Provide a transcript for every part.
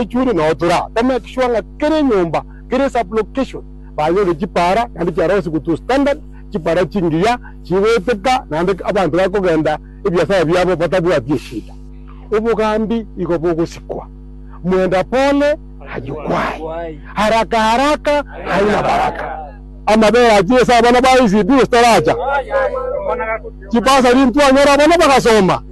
echuri na otura, to make sure ng'a kera enyomba kere sub location banyore chipara naende chiarosiwe to standard, chipara chingiya chigoeteka naende abanto bakogenda ebiasara biabo batabwati eshida. Obogambi igo bogosikwa, mwenda pole hajukwai, haraka haraka haina baraka. Amabere achire ase abana ba ECD gose taracha, chibasari ntwanyore abana bagasoma.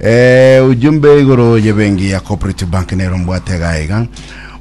Eeh ujumbe igoro ye benki ya cooperative bank nero mbwate iga iga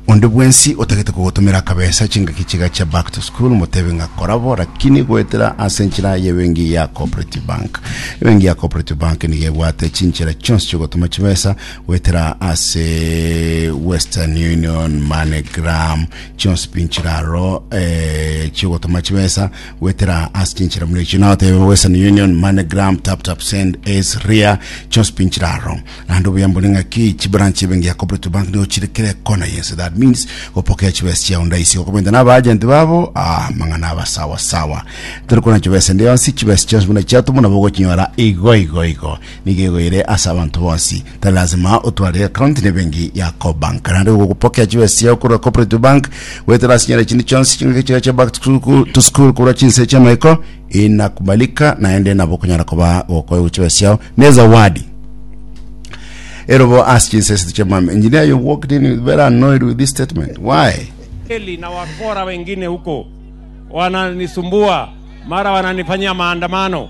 onde bwensi otagete kogotumera kabesa chingaki chiga chia back to school motebe ng'a korabo lakini goetera ase enchera ye benki ya cooperative bank ebenki ya cooperative bank niga ebwate chinchera chionsi chiogotuma chibesa goetera ase western union moneygram chionsi pi nchiraro eh, chiogotuma chibesa Gwetera ase chinchera buna echi notebe Western Union, MoneyGram, TapTap Send, Ace, Ria, chionsipi nchira aro. Naende obuya mbone ng'aki chibranch ebenge ya Cooperative Bank nigo chire kera ekona yense. That means gopokea chibesa chiao ndaisi gokobenta naba agent babo ah, amang'ana aba sawa sawa. Tari kona chibesa ende yonsi, chibesa chionsi buna chiatumwa nabo ogochinyora igo igo igo. Nigo egoire ase abanto bonsi. Tari lazima otware account na ebenki ya Cobank. Naende igo ogopokea chibesa chiao korwa Cooperative Bank, goetera ase chinyare chinde chionsi chingaki chiao chia back to school, to school korwa chinse chi'amaiko inakubalika naende nabo okonyara koba gokoewa chibesa chiao na ezawadi. Erobo ase chinse esete chi'amame. Engineer you walked in with very annoyed with this statement. Why? Eli na wakora wengine huko wananisumbua, mara wananifanyia maandamano.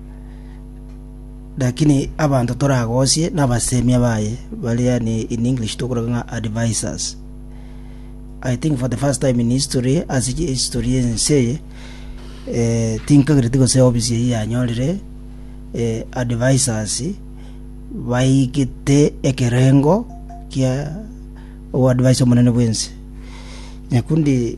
Lakini abanto toragosie nabasemia baye, baria yani in English tokoroka ng'a advisers. I think for the first time in history, ase chi- history y'ense eye, eh, tinkagereti gose ofisi eyio yanyorire eh, advisers baigete ekerengo kia oadvise omonene bw'ense. Nyakundi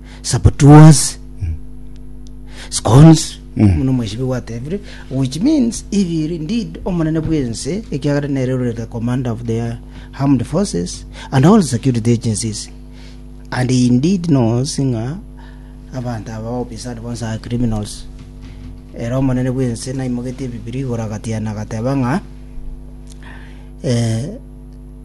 sabotuas scones mm. nomweshibi gwatebire which means if you are indeed omonene bw'ense ekiagera nere ore the commander of the armed forces and all security agencies and he indeed knows ng'a abanto aba ofisad bonse are criminals ere omonene bw'ense naimogetie ebibiri igoro agatiana agateba ng'a eh,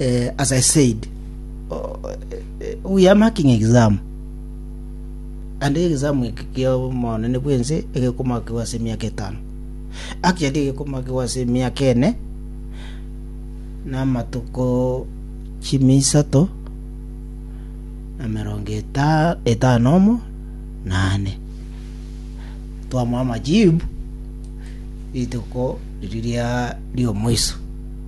uh, as I said, uh, we are marking exam and exam ekiamonene bwense egekomakigwa ase emiaka etano actually egekomakigwa ase emiaka ene na amatuko chimisato na merongo eta- etano omo nane twamwa amajibu rituko riria riomoiso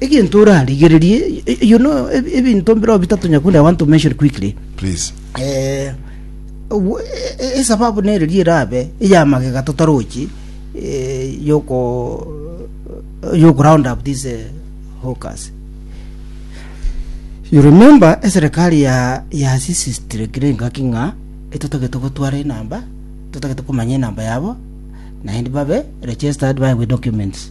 Egento orarigererie, y- you know, eb- ebinto mbireo bitato Nyakundi, I want to mention quickly. Please. Eh, obu- e- e- esababu nere ri erabe eya magega totarochi eh, yoko yoko round up these eh, hawkers. You remember eserikali ya ya sisi strikire ingaki ng'a etotagete gotwara enamba, totagete komanya enamba yabo, naende babe registered by with documents.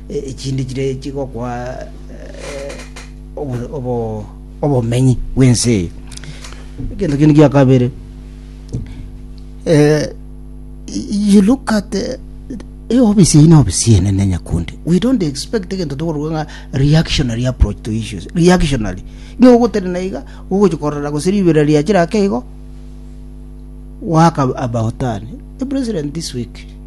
Echinde chire chigokwa obomenyi bw'ense eye. Egento kende gia kabere, you look at eofisi eye na ofisi enene nyakundi we don't expect egento tokorwa ng'a reactionary approach to issues reactionary nigo ogotenena iga ogochi korora gose ribera riachire ake igo waka about turn the president this week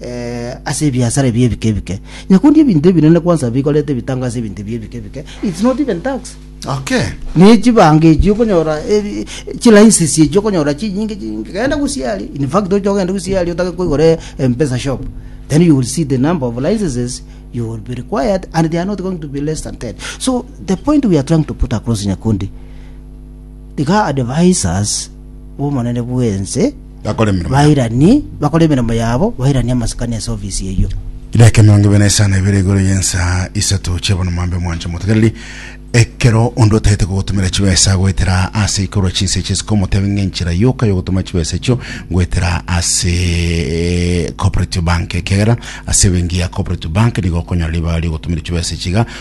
eh, ase ebiasara ebi ebike ebike. Nyakundi ebinto ebinene kwansa bikorete ebitango ase ebinto ebi ebike ebike. It's not even tax. Okay. Ne chibanga echi okonyora ebi- chilicenses echi okonyora chinyinge chinyinge. Genda gusiari. In fact ocha ogenda gusiari otake koigora mpesa shop. Then you will see the number of licenses you will be required and they are not going to be less than 10. So the point we are trying to put across Nyakundi Iga advisers b'omonene bw'ense Bakore emeremo yabo. bairani, bakore emeremo yabo, bairanie amasikani ase ofisi eyio. Edaika emerongo ebere na isano ebere igoro y'ensa isato chi'obonomambe mwanche motegereri, ekero onde otagete kogotumera chibesa agoetera ase aikorwa chinsa echi isiko omotebe ng'a enchera yoka yogotuma chibesa echio ngoetera ase Cooperative Bank ekiagera ase ebenki ya Cooperative Bank nigo okonyora ribaga ri'ogotumera chibesa echi iga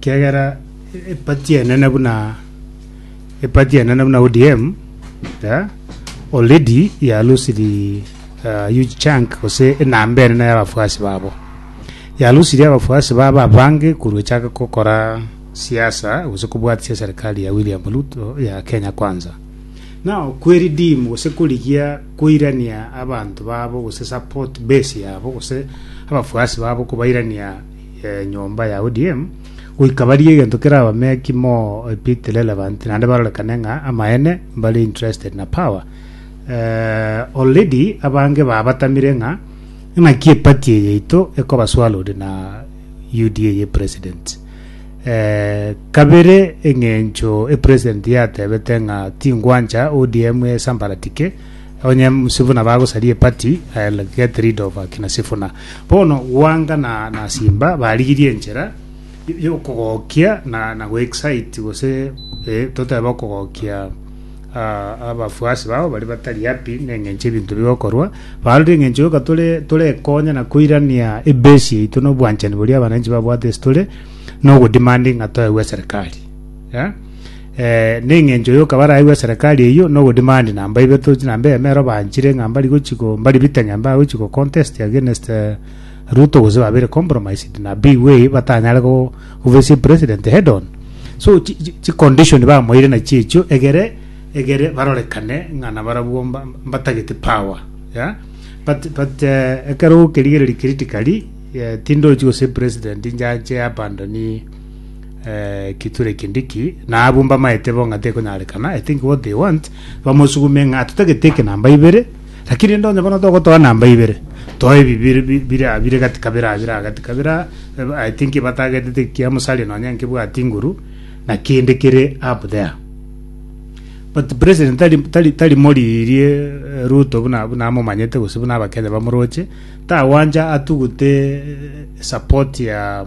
Kiagera epati enene buna epati enene buna ODM yeah, already yalusiri uh, huge chunk gose enamba enene y'abafuasi babo yalusiri abafuasi babo abange korwa echaka kokora siasa gose kobwatisia serikali ya William Ruto ya Kenya Kwanza nao kweridimu gose korigia koirania abanto babo gose support base yabo gose abafuasi babo kobairania y'enyomba ya ODM, goika barie egento kere abameki mo a bit relevant naende barorekane ng'a amaene mbare interested na power. Eh, already abange babatamire ng'a ng'aki epati eye yaito ekoba swallowed na UDA ye president. Eh, kabere eng'encho e president yatebete ng'a tingwancha ODM esambaratike Onye Sifuna bagosaria epati I'll get rid of akina Sifuna. Bono Gwanga na, na Simba barigirie enchera y- y'okogokia na, na goexcite gose eh, totebe okogokia ah, abafuasi bao bari batari happy neng'encho ebinto bigokorwa barorire eng'encho yoka tore torekonya na koirania ebase yaito na obwanchani boria abananchi babwate ase tore na ogodemanding ng'a toegwe eserikali yeah? Ee, nengencho yoka baraigwe eserekari eyio na ogodimandi na mbabe tochi na mbabe ero banchire ng'a mbari gochi go mbari bite ng'a mbabe gochi go contest against eh, Ruto gose babere compromised na big way batanyare go gofesia president head on so chi, chi, chi condition bamoire na chiechio egere egere barorekane ng'a na barabwo mba- mbatagete power yeah? but but eh, ekero okerigereri critically eh, tindochi gose president njache abandoni Ekiture kindiki nabumba maete bo ng'a tekonyarekana, I think what they want bamosugume ng'a totagete eke namba ibere, lakini rende onye bono togotoa namba ibere, toa ebi bire bi- bire aa bire gati kabere aa bire aa gati kabere aa, eba- I think batagetete ekia Musalia nonye nkebwati nguru, na kende kere up there. But president tari tari tari moriirie eh, Ruto buna buna amomanyete gose buna abakenya bamoroche, tagwancha atugute eh, support ya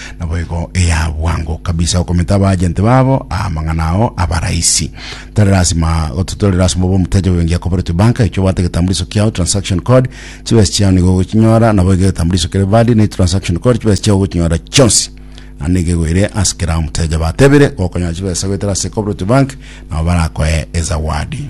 Naboigo eya bwango kabisa okometa abajenti babo amang'ana ao abarahisi. Tari lasima tari lasima obe omuteja bw'ebenki ya Cooperative Bank, ekio obwate egetambuliso kiao, transaction code, chibesa chiao nigo ogochinyora, naboigo egetambuliso kere valid ne transaction code chibesa chiao ogochinyora chionsi. Na nigo egoire ase kera omuteja batebire gokonyora chibesa goetera ase Cooperative Bank nabo barakoe ezawadi.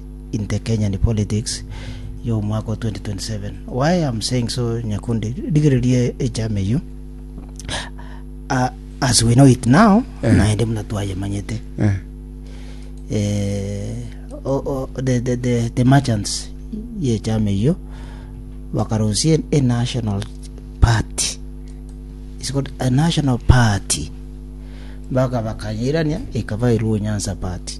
in the Kenyan politics y'omwaka o 2027. Why I'm saying so, Nyakundi, rigereria echama eyio. Uh, as we know it now, Eh. naende muna twayemanyete. Eh. Eh, o, o, the, the, the, the merchants y'echama eyio bakarusia a national party. It's called a national party. Baka bakanyirania ikaba iruo Nyanza party.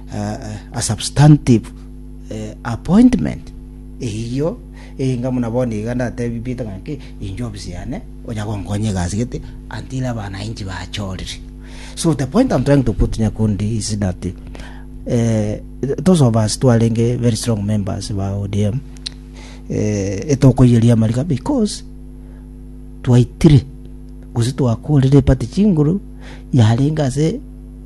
a substantive appointment, eyio eyinga buna bono iga ndatebibiete ng'a ki, inche ofisi yane onya gonkonya egasi gete until abana inche bachorire. So the point I'm trying to put Nyakundi is that eh, those of us twarenge very strong members ba ODM eh, etokoyeria amarika because twaitire gose twakorire epati chinguru yarenge ase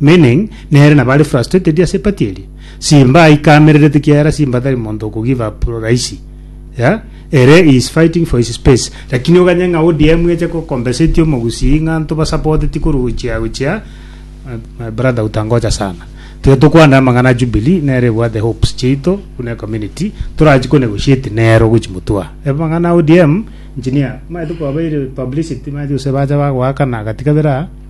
Meaning, Nere nabare frustrated ase party eria. Simba aika amererete kiagera Simba tari monto oko give up rahisi. Yeah? Ere he is fighting for his space. Lakini oganye ng'a ODM eche ko compensate omogusii ng'a ntoba support ti koruchia gochia my, my brother utangoja sana. Tiga tokwane amang'ana a Jubilee nere ebwate hopes chiaito buna ecommunity torachi ko negotiate nero ogochi motwa. Amang'ana a ODM, engineer, maete kwabaire publicity maete gose bacha bagoakana gati kabere aa.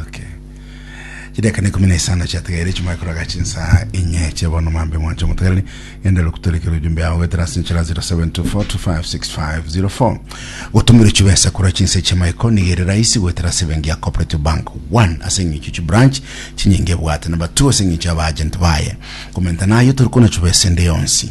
Okay. Chideka ne kumi na isano chiategeire chimwe kuraga chinsa inye chebono mambe mwanche omotegereri genda lokutoreke rujumbe yao getera ase nchera 0724256504 gotumire chibesa kura chinse chimaiko nigere raisi gwetera ase bengi ya cooperative bank 1 ase ng'icho chi branch chinyinge bwate namba 2 ase ng'icho aba agent baye komenta nayo tori kona chibesa ende yonsi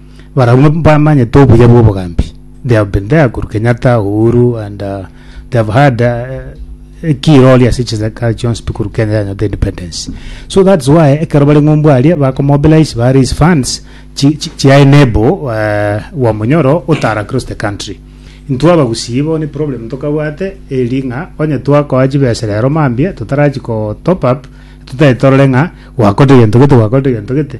Barabwo bamanyete obuya bw'obogambi. They have been there, Kuru Kenyatta, Uhuru, and uh, they have had uh, a key role ase chisaka chionsi pi Kuru Kenya yanyota independence. So that's why ekero bari ng'umbu aria bakomobilize ba raise funds chi- chi- chia enable uh, wa monyoro otara across the country. Intwe abagusii bo ni problem tokabwate eri ng'a onye twakoa chibesa rero mambia totarachi ko top up tutaetorore ng'a gwakorire gento gete gwakorire gento gete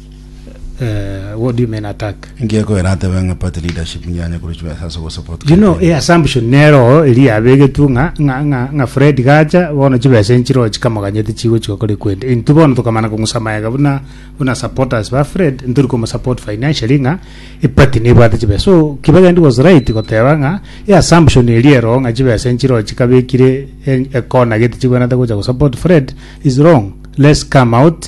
uh, what do you mean attack? ngekoera atebe ng'a party leadership ngiyanye kuruchwa ase gosupport You know, a assumption nero eri yabegetwe ng'a ng'a ng'a ng'a Fred gacha bono chibesa enchiro chikamoganyete chigochika kore kwende. Intwe bono tokamana kong'usa mayega buna buna supporters ba Fred ntori komosupport financially ng'a epati nebwate chibesa. So Kibegendi was right goteba ng'a a assumption eri ero ng'a chibesa enchiro chikabekire en- ekona gete chibwenete gocha gosupport Fred is wrong. Let's come out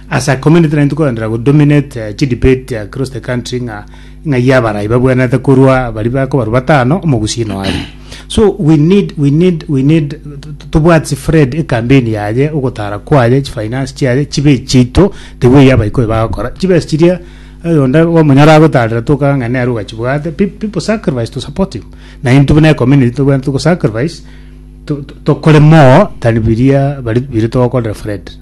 Ase community nari tokorendera go dominate eh, chi debate across the country ng'a ng'a ya abarai babwenerete korwa bari bakobarwa batano omogusii noari so we need we need we need t- t- tobwate sifred ekambeni yaye ogotara kwaye chifinance chiaye chibe chito tewe ya abaikoi bagokora chibesi chiria oyonde omonyora agotarera tokaga ng'a nere ogachibwate Pe- people sacrifice to support him na intwe buna ecommunity tobwenerete togosacrifice to- to- tokore more than biria bari bire togokorera fred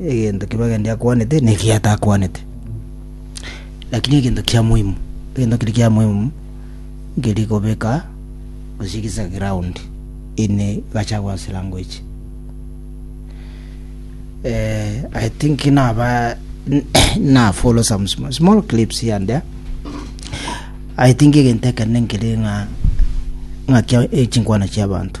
egento kibe gende akwanete na ekiya atakwanete lakini egento kia muhimu egento kere kia muhimu nkeri kobeka gose gisa ground ime gacha gose language eh, I think naba na follow some small, small clips here and there I think egento ekende nkere ng'a ng'a kia echinkwana chiabanto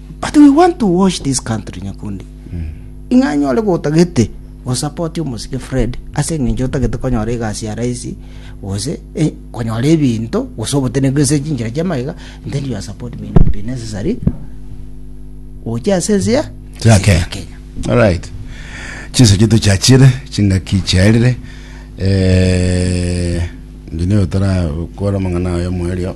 But we want to watch this country nyakundi. Ing'a nyore gotagete go support omosike Fred ase eng'encho otagete konyora egasi ya raisi gose eh, konyora ebinto gose obotenenku ase chinchera chia magega and then your support may not be necessary oche ase ense ya Chia Kenya. Kenya. Alright. Chinsa chitu chiachire, chingaki chiarire. Eh, ngine otara kwara mangana ayo mwerio.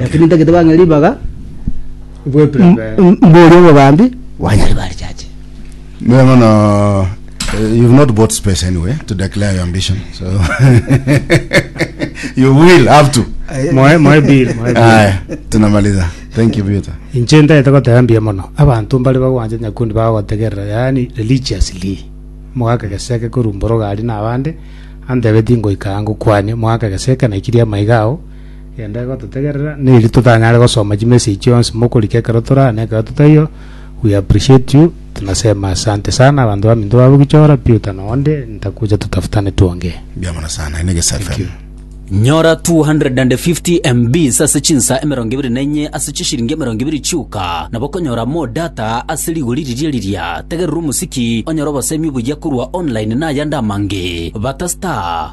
Lakini ntagete bang'e ribaga mbori obogambi bwanyare bari chache. Mira mono, eh, you've not bought space anyway to declare your ambition. So you will have to. Moe moe bill, moe bill. Aya, tunamaliza. Thank you Peter. Inche ntagete goteba mbuya mono. Abanto mbare bagwancha nyakundi bagotegerera, yaani religiously. Mogaka geseke korumboroga ari na abande, antebetie ngoika aa ngokwanie, mogaka geseke naikirie amaiga ao, Gento egototegerera neri totanyare gosoma chimessage chionsi mokorika ekero tore aa na ekero totaiyo. We appreciate you tunasema asante sana abanto baminto babogichora Peter na onde ntakuja tutafutane tuongee. Mbuya mono sana naende Gesa Thank FM. you. Nyora 250MBs ase chinsa emerongo ebere na enye ase chishiringi emerongo ebere chioka, nabo okonyora more data ase rigori riria riria. Tegerera omosiki, onyore obosemi obuya korwa online na ayande amange. Bata star.